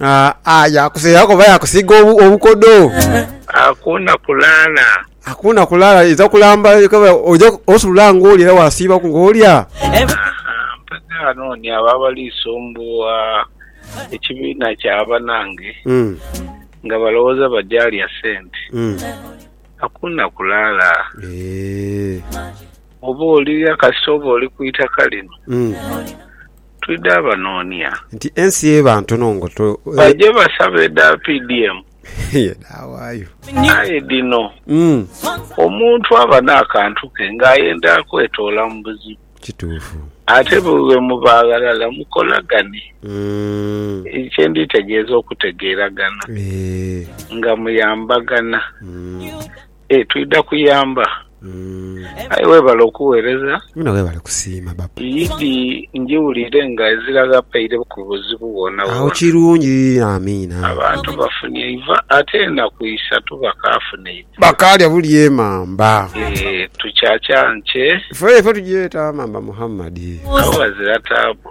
Ah, ah, yakuseeraku oba yakusiiga obu- obukodo. Hakuna kulala. Hakuna kulala iza kulamba kaba oja osula ng'oli era wasiibaku ng'olya. Mpaka ghano ni abo abali sumbuugha ekibiina kya banange Mm, nga balowooza baja lya sente. mm. Hakuna kulala. Eh, Oba olirya kasita oba oli ku itaka lino. mm. twidha banonia. Nti ensi eba ntono ngo to. Baje basabe edha PDM. Ye dhawayo. Aye dhino. Omuntu aba nakantu ke nga ayenda kwetoola mu buzibu. Kituufu. Ate bwemuba aghalala mukolagane. Ekyo kye nditegeeza okutegeeragana. Nga muyambagana. Eeh twidha kuyamba aye webale okuwereza. Mwena webale kusiima baba. Yidhi njiwulire nga ezira ghapeire ku buzibu bwona bwona. Agho kirungi Amiina. Abantu bafunye eiva ate enaku isatu bakafuna eiva. Bakalya buli emamba. Eeh tukyakya nkye. Fee ffe tugyeta mamba Muhammad. Agho ghazira taabu.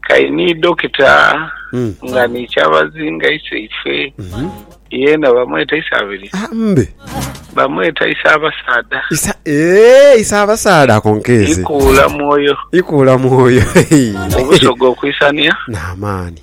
Kai ni Dokita nga ni Kyabazinga iseife yeena bamweta Isaabiri? Bamweta Isaabasaadha. Eeh Isaabasaadha ako nkeeze. Ikuula mwoyo. Ikuula mwoyo. Obusoga okwisania. N'amaani.